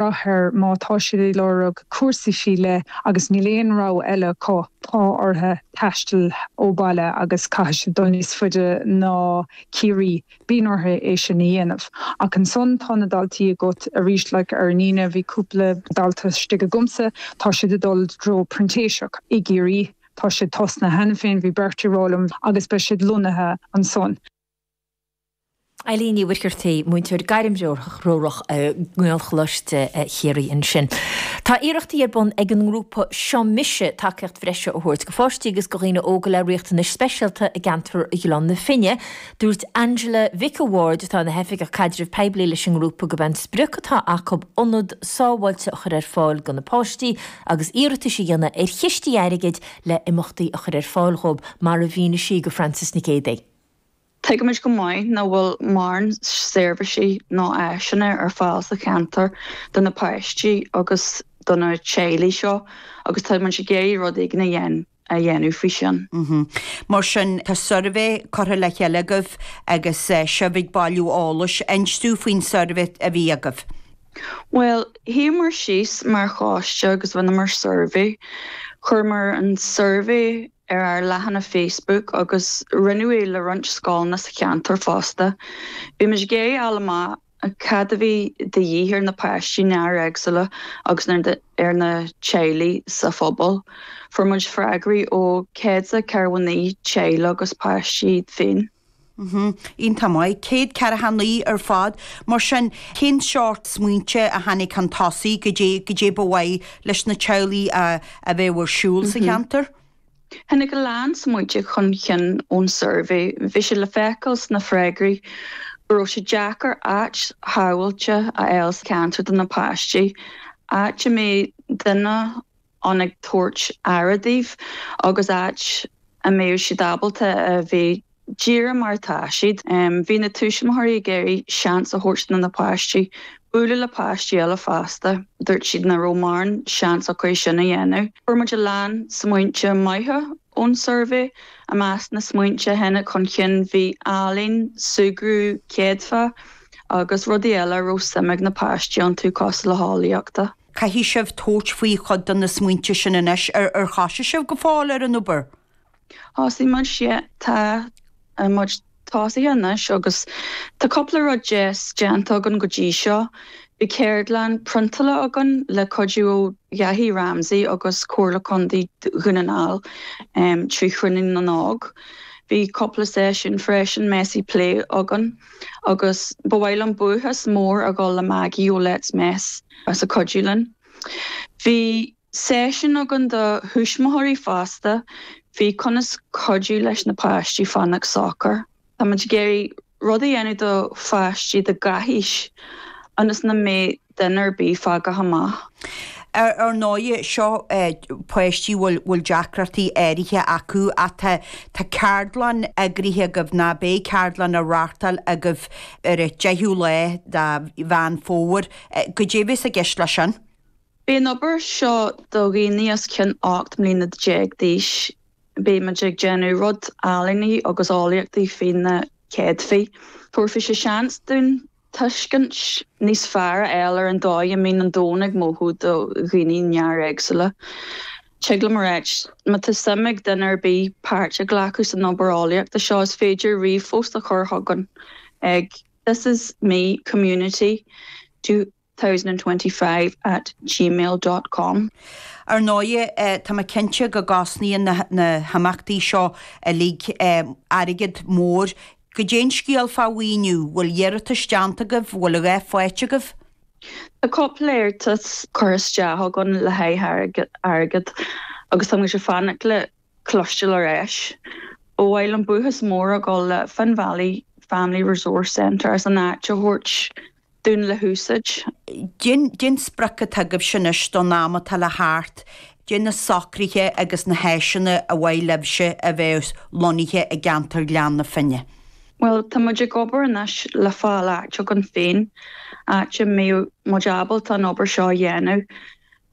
brath air, má tá siad ag lorg cúrsa fé leith agus níl aon rogha eile acu, tá orthu taisteal ó bhaile agus caithfidh siad dul níos faide ná Ciarraí, bíonn orthu é sin a dhéanamh. Ach ansan tá na daltaí agat arís, like ar an Aoine bhí cúpla dalta istigh agamsa, tá siad ag dul i dtreo printíseacht i gCiarraí, tá siad tosnaithe cheana féin, bhí beirt ag rá liom agus beidh siad lonnaithe ansan. Eileen Uí Mhuircheartaigh, múinteoir gairmthreorach i nGaelcholáiste Chiarraí ansin. Tá iarrachtaí ar bun ag an ngrúpa Seo Mise tacaíocht bhreise a thabhairt go pháistí agus go dhaoine óga le riachtanais speisialta i gceantar Ghleann na Finne. Dúirt Angela Mhic a' Bhaird, atá ina hOifigeach Caidrimh Poiblí leis an ngrúpa, gurb é an sprioc atá acu ionad sábháilte a chur ar fáil do na páistí agus iarratais a dhéanamh ar chistí airgid le himeachtaí a chur ar fáil dhóibh, mar a mhínigh sí go Frances Nic Géadaigh. Tuigimid go maith nach bhfuil mórán seirbhísí ná áiseanna ar fáil sa cheantar do na páistí agus do na teaghlaigh seo agus táimid ag iarraidh rud éigin a dhéanamh faoi sin. Mar sin, tá suirbhé curtha le chéile agaibh agus sibh ag bailiú eolais. An inseoidh tú faoin suirbhé a bhí agaibh? Bhuel, shuíomar síos mar choiste agus rinneamar suirbhé. Chuireamar an suirbhé ar ár leathanach Facebook agus roinneadh é le roinnt scoileanna sa cheantar fosta. Bhí muid ag iarraidh fáil amach cad a bhí de dhíth ar na páistí néar-éagsúla agus ar na teaghlaigh sa phobal. Fuair muid freagraí ó 149 teaghlaigh agus páistí féin. Mh, iontach maith. 149 ar fad. Mar sin, cén sórt smaointe a tháinig chun tosaigh cad é, cad é ba mhaith leis na teaghlaigh a, a bheadh ar siúl sa cheantar? Tháinig a lán smaointe chun cinn ón suirbhé. Bhí sé le feiceáil sna freagraí go raibh sé deacair áit shábháilte a fháil sa cheantar do na páistí, áit a mbeadh duine ann ag tabhairt aire dóibh agus áit a mbeidh siad ábalta a bheith díreach mar atá siad. Bhí na tuismitheoirí ag iarraidh seans a thabhairt do na páistí bualadh le páistí eile fosta. Dúirt siad nach raibh mórán seans acu é sin a dhéanamh. Fuair muid a lán smaointe maithe ón suirbhé. I measc na smaointe a tháinig chun cinn bhí ealaín, súgradh céadfach agus rudaí eile a raibh suim ag na páistí iontu cosúil le heolaíocht. Caithfidh sibh tabhairt faoi chuid de na smaointe sin anois. Ar thosaigh sibh go fóill ar an obair? Thosaigh muid, sea. Tá muid tosaithe anois agus tá cúpla rud deas déanta againn go dtí seo. Bhí ceardlann priontála againn le cuidiú ó Dhaithí Ramsey agus Comhairle Contae Dhún na nGall trí Chruinniú na nÓg. Bhí cúpla seisiún freisin Messy Play againn agus ba mhaith liom buíochas mór a ghabháil le Maggie ó Let's Mess. as a cuidiú linn. Bhí seisiún againn do thuismitheoirí fosta faoi conas cuidiú leis na páistí fanacht socair. Tá muid ag iarraidh rud a dhéanamh do pháistí de gach aois ionas nach mbeidh duine ar bith fágtha amach. Ar ndóigh, seo páistí a bhfuil deacrachtaí áirithe acu ach tá ceardlann eagraithe agaibh, nó beidh ceardlann á reáchtáil agaibh ar an 10ú lá de Mheán Fómhair, Goidé a bheas i gceist leis sin? Beidh an obair seo do dhaoine os cionn ocht mbliana déag d'aois. Beidh muid ag déanamh rud ealaíne agus eolaíochtaí faoi na céadfaí. Tabharfaidh sé seans dúinn tuiscint níos fearr a fháil ar an dóigh a mbíonn an domhan ag mothú do dhaoine néaréagsúla. Tig liom a ráit, má tá suim ag duine ar bith páirt a ghlacadh san obair eolaíochta seo, is féidir ríomhphost a chur chugainn ag. This is me community 2025 at gmail dot com. Ar ndóigh, tá mé cinnte go gcosnaíonn na himeachtaí seo uilig airgead mór. Goidé an scéal fá mhaoiniú, bhfuil iarratais déanta agaibh, bhfuil a dhath faighte agaibh? Tá cúpla iarratas curtha isteach againn le haghaidh airgead agus tá muid ag fanacht le cloisteáil ar ais. Ba mhaith liom buíochas mór a ghabháil le Finn Valley Family Resource Centre as an áit a thabhairt dúinn le húsáid. Goidé an sprioc atá agaibhse anois don am atá le theacht. Goidé na socruithe agus na háiseanna ar mhaith libhse a bheith lonnaithe i gceantar Ghleann na Finne. Bhuel, tá muid ag obair anois le fáil áit againn féin, áit a mbeidh muid ábalta an obair seo a dhéanamh.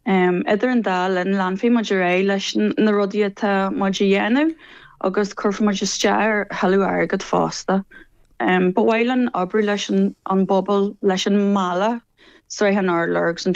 Idir an dá linn, leanfaidh muid ar aghaidh leis na rudaí atá muid a dhéanamh agus cuirfidh muid isteach ar thuilleadh airgid fosta. Ba mhaith linn oibriú leis an bpobal, leis an mbaile, Srath an Urláir agus an.